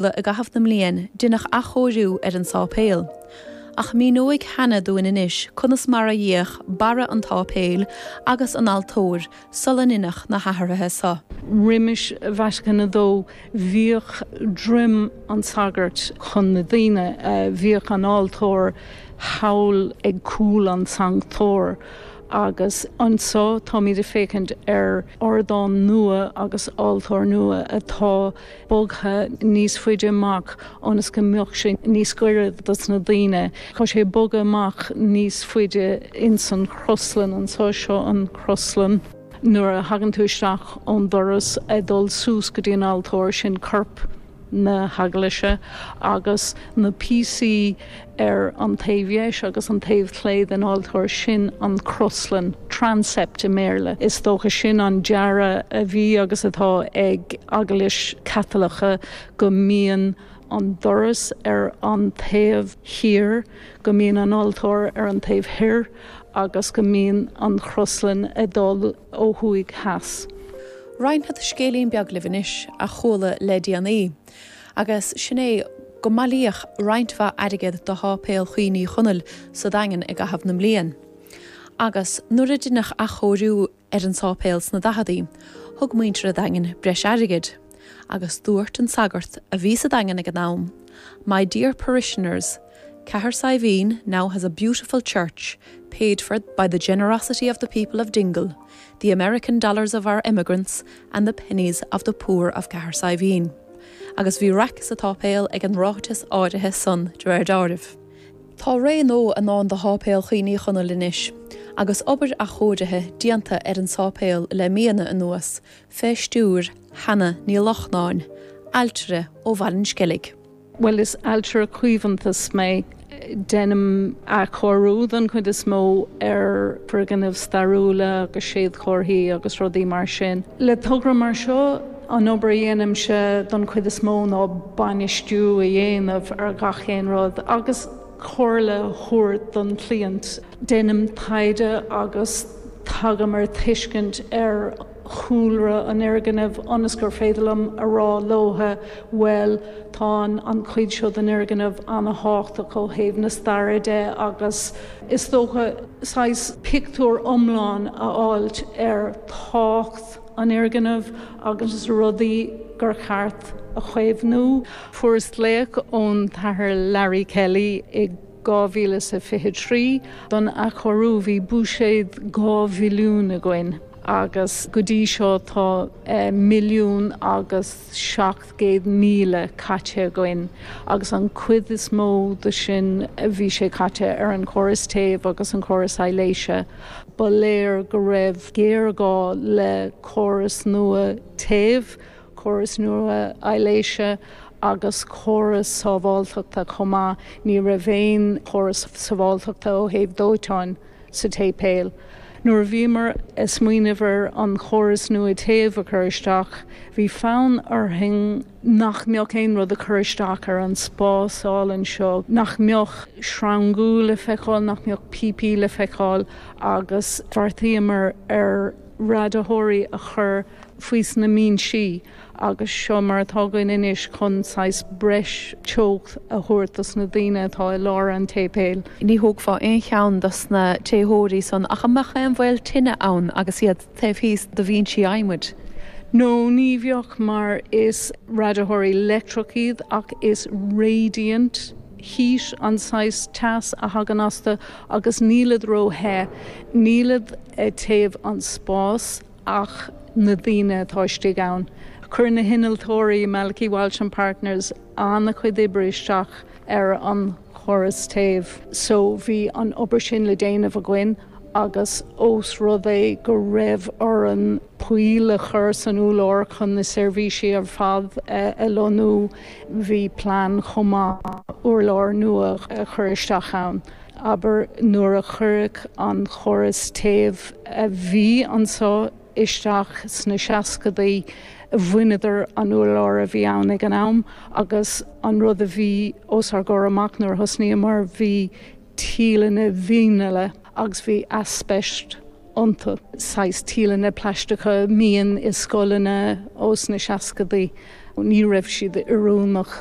Uladh i gcaitheamh na mbliain deineadh athchóiriú ar an sáipéal. Ach míneoidh Hannah dúinn anois conas mar a bhíodh barra an tsáipéil agus an altóir sula ndeineadh na hathruithe seo. Roimis Vatican a Dó bhíodh droim an tsagairt chun na daoine. Bhíodh an altóir thall ag cúl an tsanctóir. Agus anseo táimid ag féachaint ar ardán nua agus altóir nua atá. bogtha níos faide amach ionas go mbeadh sé níos goire dos na daoine. Tá sé ag bogadh amach níos faide ins an chroslann anso. Seo an chroslann. Nuair a thagann tú isteach ón doras ag dul suas go dtí an altóir sin corp na heaglaise agus na píosaí. ar an taobh dheis agus an taobh chlé den altóir, sin an croslann, transept i mBéarla. Is dócha sin an dearadh a bhí agus atá ag Eaglais Chaitliceach go mbíonn an doras ar an taobh thiar, go mbíonn an altóir ar an taobh thoir agus go mbíonn an chroslann ag dul ó thuaidh theas. Roinnfead scéilín beag libh anois a chuala le déanaí. Agus sin é go mbailíodh roinnt mhaith airgead do Sháipéal Cuimhne Uí Chonaill sa Daingean i gcaitheamh na mbliain. Agus nuair a deineadh athchóiriú ar an sáipéal sna daicheadaí thug muintir a' Daingin breis airgid. Agus dúirt an sagart a bhí sa Daingean ag an am, 'My dear parishioners, Cathair Saidhbhín now has a beautiful church, paid for by the generosity of the people of Dingle, the American dollars of our emigrants and the pennies of the poor of Cathair Saidhbhín. Agus bhí raic sa tsáipéal ag an ráiteas áirithe san, de réir deáraimh. Tá ré nua i ndán do Sháipéal Cuimhne Uí Chonaill anois. Agus obair athchóirithe déanta ar an sáipéal le míonna anuas, fé stiúir Hannah Ní Lochnáin, ailtire ó Bhaile an Sceilg, Bhuel, is ailtire caomhantais mé. Déanaim athchóiriú, don chuid is mó, ar foirgnimh stairiúla agus séadchomharthaí agus rudaí mar sin. Le togra mar seo, an obair a dhéanaimse, don chuid is mó, ná bainistiú a dhéanamh ar gach aon rud agus comhairle a thabhairt don chliant. Déanaim taighde agus tagaim ar tuiscint ar. chúlra an fhoirgnimh ionas gur féidir liom a rá leotha bhuel tá an chuid seo den fhoirgneamh an-thábhachtach ó thaobh na staire de agus is dócha saghas pictiúr iomlán a fháilt ar tábhacht an fhoirgnimh agus rudaí gur cheart a chaomhnú. Fuaireas glaoch ón tAthair Larry Kelly i. 2023. Don athchóiriú bhí buiséad €2 mhilliún againn agus go dtí seo tá €1 milliún agus 700,000 caite againn agus an cuid is mó de sin bhí sé caite ar an chóras téimh agus an córas aibhléise. Ba léir go raibh géarghá le córas nua téimh. córas nua aibhléise agus córas sábháilteachta chomh maith. Ní raibh aon chóras sábháilteachta ó thaobh dóiteáin sa tséipéal. Nuair a bhíomar ag smaoineamh ar an chóras nua téimh a chur isteach, bhí fonn orainn nach mbeadh aon rud ag cur isteach ar an spás álainn seo, nach mbeadh sreangú le feiceáil, nach mbeadh píopaí le feiceáil agus bheartaíomar ar. radaitheoirí a chur faoi sna mbinsí agus seo mar atá againn anois chun saghas breis teocht a thabhairt dos na daoine atá i lár an tséipéil. Ní thógfaá aon cheann dos na téitheoirí san ach a mbeadh aon bhaol tine ann agus iad taobh thíos do bhinsí adhmaid. No, ní bheadh mar is radaitheoirí leictreach iad ach is radiant. heat, an saghas teas a thagann astu agus nílid ró the, nílid ag téamh an spás ach na daoine atá istigh ann. Chuir na hinnealtóirí, Malachy Walsh and Partners, an-chuid oibre isteach ar an chóras téimh so bhí an obair sin le déanamh againn. agus ós rud é go raibh orainn poill a chur san urlár chun na seirbhísí ar fad a lonnú, bhí plean chomh maith urlár nua a chur isteach ann. Abair nuair a cuireadh an córas téimh a bhí anseo isteach sna seascadaí, bhaineadar an t-urlár a bhí ann ag an am agus an rud a bhí os ár gcomhair amach nuair a thosnaíomar, bhí, tíleanna vinile agus bhí aispeist iontu, saghas tíleanna plaisteacha a mbíonn i scoileanna ós na seascadaí. Ní raibh siad oiriúnach